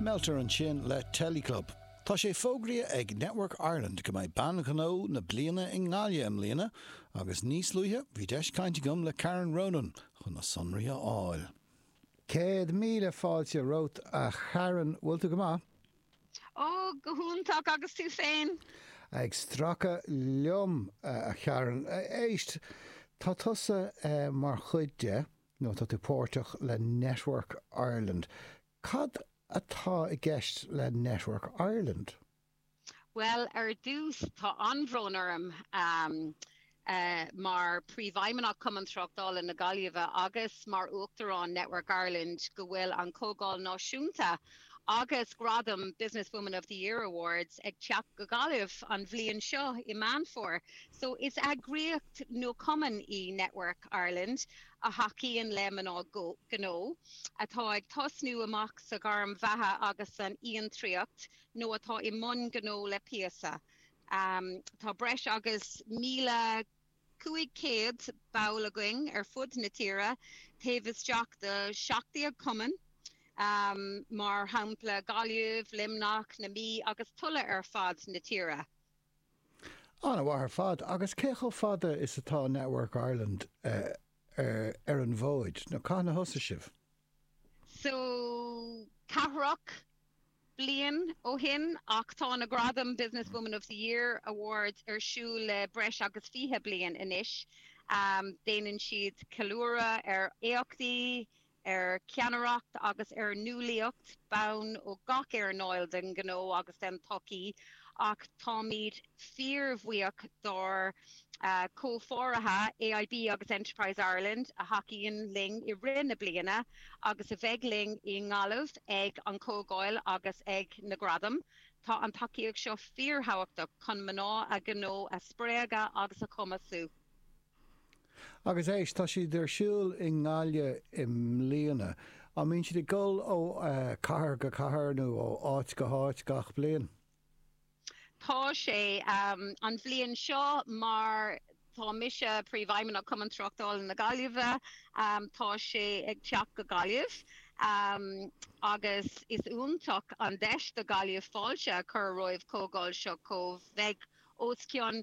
Meallta ansin le Teleclub. Tá sé fógraithe ag Network Ireland go mbeidh Bean Ghnó na Bliana i nGaillimh i mbliana agus níos luaithe bhí deis cainte agam le Karen Ronan chun na sonraí a fháil. Céad míle fáilte romhat a Karen, bhfuil tú go maith? Ó, go hiontach agus tú féin? Ag stracadh liom a Karen. Éist, tá tusa mar chuid de. nó tá tú páirteach le Network Ireland. Cad atá i gceist le Network Ireland? Bhuel, ar dtús, tá an-bhród orm mar Príomhfheidhmeannach Cumann Tráchtála na Gaillimhe agus mar Uachtarán Network Ireland go bhfuil an Chomhdháil Náisiúnta Agus gradaim Business Woman of the Year Awards ag teacht go Gaillimh an bhliain seo i Meán Fómhair, so is eagraíocht nó cumann é Network Ireland a thacaíonn le mná gnó atá ag tosnú amach sa ghairm bheatha agus san fhiontraíocht nó atá i mbun gnó le píosa. Em, tá breis agus 1,000. 500 ball againn ar fud na tíre, taobh isteach de 17 cumann, mar shampla Gaillimh, Luimneach, na Mí agus tuilleadh ar fud na tíre. An-mhaith ar fad. Agus cé chomh fada is atá Network Ireland ar an bhfód nó cathain a thosnaigh sibh? So, ceathracha bliain ó shin ach tá na gradaim Business Woman of the Year Awards ar siúl le breis agus 20 bliain anois. Déanann siad ceiliúradh ar éachtaí, ar cheannaireacht agus ar nuálaíocht ban ó gach earnáil den ghnó agus den tsochaí ach táimid fíorbhuíoch dár gcomhpháirithe AIB agus Enterprise Ireland a thacaíonn linn i rith na bliana agus a bheidh linn i nGaillimh ag an Chomhdháil agus ag na Gradaim. Tá an tacaíocht seo fíorthábhachtach chun mná gnó a spreagadh agus a chumasú. Agus éist, tá siad ar siúl i nGaillimh i mbliana. An mbíonn siad ag dul ó chathair go cathair nó ó áit go háit gach bliain? Tá sé. An bhliain seo, mar tá mise Príomhfheidhmeannach Chumann Tráchtála na Gaillimhe, tá sé ag teacht go Gaillimh agus is iontach an deis do Ghaillimh fáilte a chur roimh chomhdháil seo mar beidh os cionn